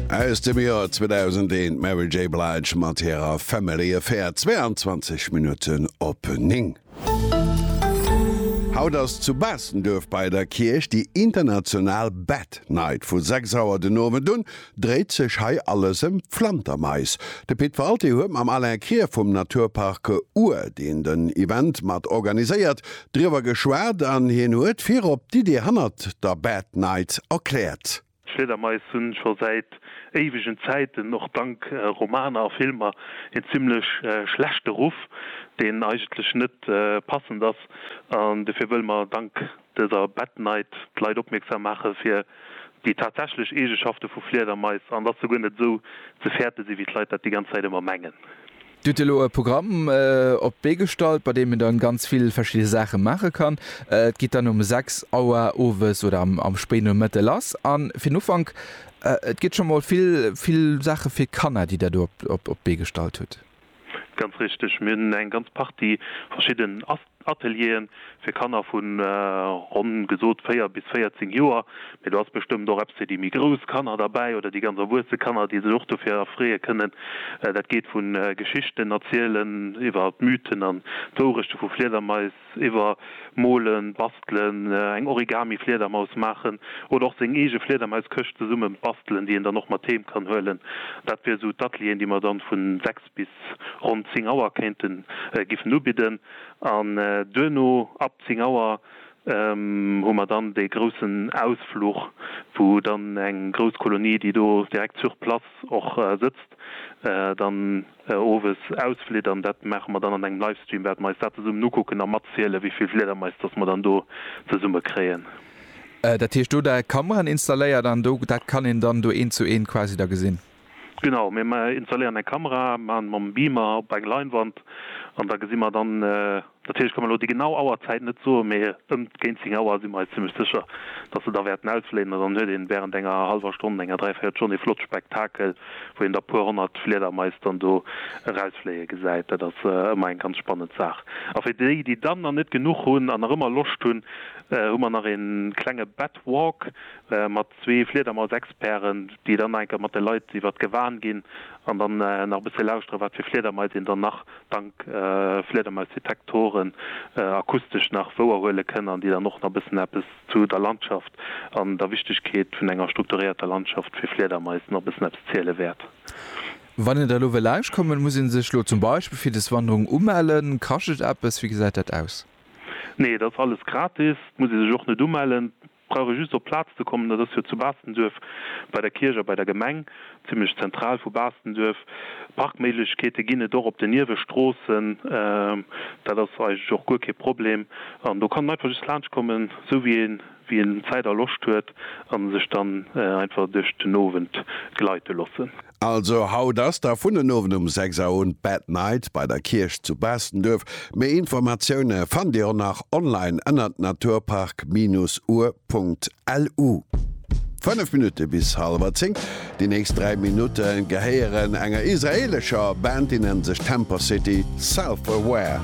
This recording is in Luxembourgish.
Aus dem Joer 2001, d'Mary J. Blige mat hirer Family Affair, 22 Minutten op 9. Haut ass zu Baastenduerf bei der Kierch déi international Bat Night. Vu 6 Auer den Owend un dréit sech hei alles ëm Flantermais. De Pit Walté huet mam Alain Krier vum Naturpark Our deen den Event mat organiséiert, Driwwer geschwat an hien huet virop d'Idee hannert der Bad Night erkläert. D'Fliedermais hunn scho säit éiwegen Zäiten, och dank Romaner a Filmer, een zimlech schlechte Ruff, deen eigentlech net passend ass. An dofir wëlle mer dank dëser Bad Night d'Leit opmierksam maache fir déi tatsächlech Eegeschafte vu Fliedermais, an dass se guer net esou ze fäerte si wéi d'Leit dat déi ganz Zäit ëmmer mengen. Dir hutt elo e Programm op d'Bee gestallt, bei deem een dann ganz vill verschidde Saache maache kann. Et geet dann um 6 Auer owes oder am Spéinomëtte lass. A fir den Ufank, et gëtt scho mol vill, vill Saache fir Kanner, déi Der do op d'Bee gestallt hutt. Ganz richteg. Mir hunn eng ganz Partie verschidden Ateliere fir Kanner vu ronn gesot 4 bis 14 Joer, mee do ass bestëmmt och eppes fir déi méi grouss Kanner derbäi oder déi ganz erwuesse Kanner, déi sech och dofir erfreeë kënnen. Dat geet vu Geschichten erzielen iwwer d'Mythen an d'Wourechte vu Fliedermais, iwwer molen, bastelen, eng Origami-Fliedermaus maachen oder och seng eege Fliedermaiskëscht zesumme bastelen, déi een dann och mat heem kann huelen. Dat wier esou d'Atelieren, déi mer dann vu 6. Aarbecht bis ronn 10 Auer kéinten giffen ubidden an duerno ab 10 Auer hu mer dann dee groussen Ausfluch, wou dann eng grouss Kolonie, déi do direkt sur place och sëtzt, dann owes ausflitt an dat maache mer dann an engem Livestream, wäerte mer eis dat zesummen ukucken a matziele wéi vill Fliedermais datt mer dann do zesumme kréien. Dat heescht, do hutt der Kameraen installéiert an do dat kann een dann do eent zu eent quasi da gesinn? Genau, mir installéieren eng Kamera, maachen mam Beamer op eng Leinwand an da gesi mer dann, natierlech ka mer elo déi genau Auerzäit net soen, mee ëm géint 10 Auer si mer eis zimmlech sécher, datt se da wäerten ausfléien an dann huet een wärend enger hallwer Stonn, enger dräivéierel Stonn ee flott Spektakel, wou een da puer honnert Fliedermais dann do erausfléie gesäit. Dat ass ëmmer eng ganz spannend Saach. A fir déi, déi dann nach net genuch hunn an nach ëmmer Loscht hunn, hu mer nach ee klenge Bat Walk mat Zwee Fliedermausexperten, déi dann nach eng Kéier mat de Leit iwwert d'Gewan ginn an dann nach e bësse lauschtere wat fir Fliedermais een dann nach dank Fliedermausdetektoren akustesch nach wouerhuele kënn an déi dann och nach e bëssen eppes zu der Landschaft an der Wichtegkeet vun enger strukturéierter Landschaft fir Fliedermais nach e bëssen eppes ziele wäert. Wann een der elo wëll lauschtkommen, muss ee sech elo zum Beispill fir des Wanderung umellen? Kascht et eppes? Wéi gesäit dat aus? Nee, et ass alles gratis. Et muss ee sech och net umellen. Brauch ee just op d'Plaz ze kommen, dat ass jo zu Baastenduerf bei der Kierch a bei der Gemeng, zimlech zentral vu Baastenduerf. Parkméiglechkeete ginn et och op den Niewestroossen, dat ass eigentlech och guer kee Problem. An do kann en einfach just laanscht kommen, esou wéi een wéi en Zäit a Loscht huet, a sech dann einfach duerch den Owend gleite loossen. Also haut ass da vun den Owend um 6 Auer un d'Bad Night bei der Kierch zu Baastenduerf. Méi Informatioune fannt Dir och nach online ënnert naturpark-ur.lu. 5 Minutte bis hallwer 10. Déi nächst 3 Minutte gehéieren enger israeelescher Band, déi nennt sech Temper City Self Aware.